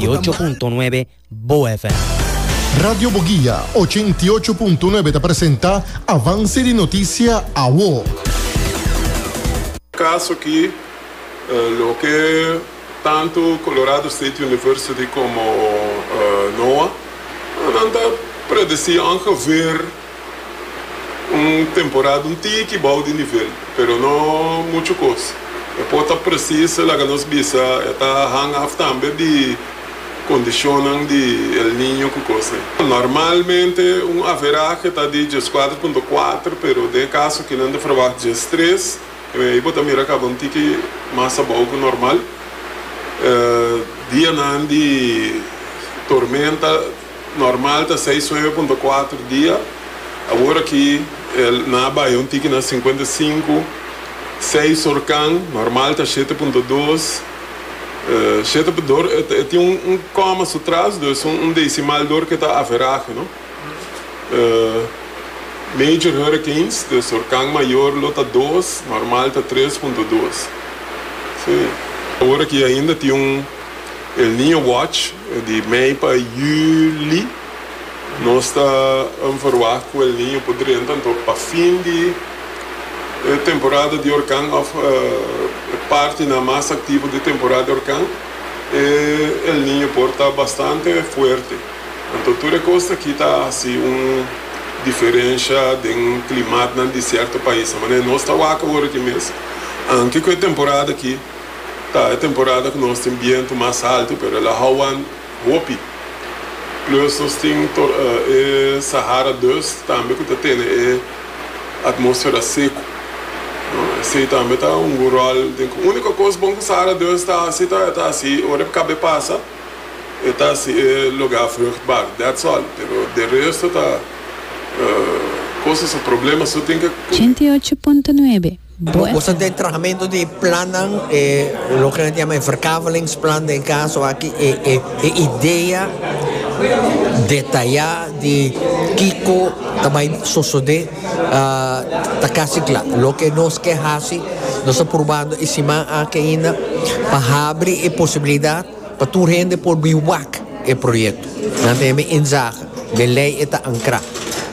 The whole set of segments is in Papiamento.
ocho punto nuebe Bo FM. Radio Boguia ochenta i ocho punto nuebe ta presenta Avanse di Noticia Awo. Caso aki loke tanto Colorado State University como NOAA nan ta predeci angever. Un temporada un tiki bou di nivel, pero no muchu kos. E por ta presis laga nos bisa e ta hang af tambe di kondishonnan di El Niño ku kosnan. Normalmente un averahe ta di dies kuater punto kuater, pero den e kaso aki nan ta ferwagt dies tres, ei bo ta mira kaba un tiki mas abou ku normal. Dianan di tormenta. Normal ta seis nueve punto kuater dia, awor aki el na bai un tiki na sinkuenta i sinku. Seis horkan, normal ta shete punto dos. Shete punto dor e tin un koma su tras, dus un desimal dor ke ta averahe, no? Major hurricanes, dus horkan mayor lo ta dos, normal ta tres punto dos. Awor aki ainda tin un. El Niño Watch di mei pa juli. Nos ta informá ku El Niño por drenta, anto pa fin di e temporada di orkan òf e partinan mas aktivo di temporada di orkan, e El Niño por ta bastante fuerte. Anto tur e kos ta kita hasi un diferensha den klimatnan di sierto paisan. Manera nos ta wak awor aki mes, anke ku e temporada aki. Ta e temporada ku nos tin bientu mas haltu pero el a houan hopi. Plus nos tin e Sahara dust tambe ku ta tene e atmosfera seku. Esei tambe ta hungu ròl den ku úniko kos bon ku Sahara dust ta hasi ta e ta hasi ora e kabe pasa e ta hasi e lugá vruchtbar. That's all. Pero de resto ta kosnan su problema su tin ke. Ochenta i ocho punto nuebe. Bo boso ta e trahamentu di e plannan e loke nan ta yama e verkavelingsplan den kaso aki e e e idea detayá di kiko ta bai sosodé ta kasi kla. Loke nos ke hasi nos ta probando e siman aki ainda pa habri e posibilidat Pa tur hende por bin wak e proyekto, nan ta hebe inzaga den lei e ta ankrá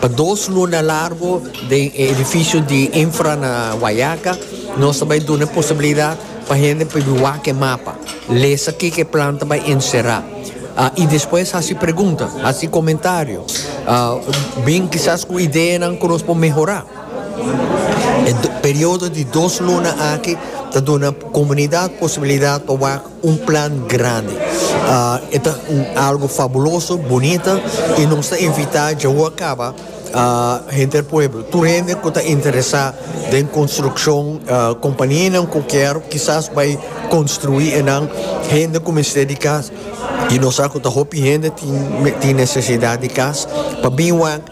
pa dos luna largo den e edifisio di infra na Guayaca. Nos ta bai duna e posibilidat pa hende por bin wak e mapa, lesa kiko e plan ta bai enserá i despues hasi pregunta, hasi komentario, bin kisas ku ideanan ku nos por mehorá. E periodo di dos luna aki ta duna komunidat posibilidat pa wak. Un plan grandi. E ta un algo fabuloso, bunita y nos ta invita djawoa caba hende di pueblo, tur hende cu ta interesa den construccion, companianan cu kier kisas bay construi enan, hende cu mester di cas y nos sa cu ta hopi hende tin necesidad di cas pa bin wak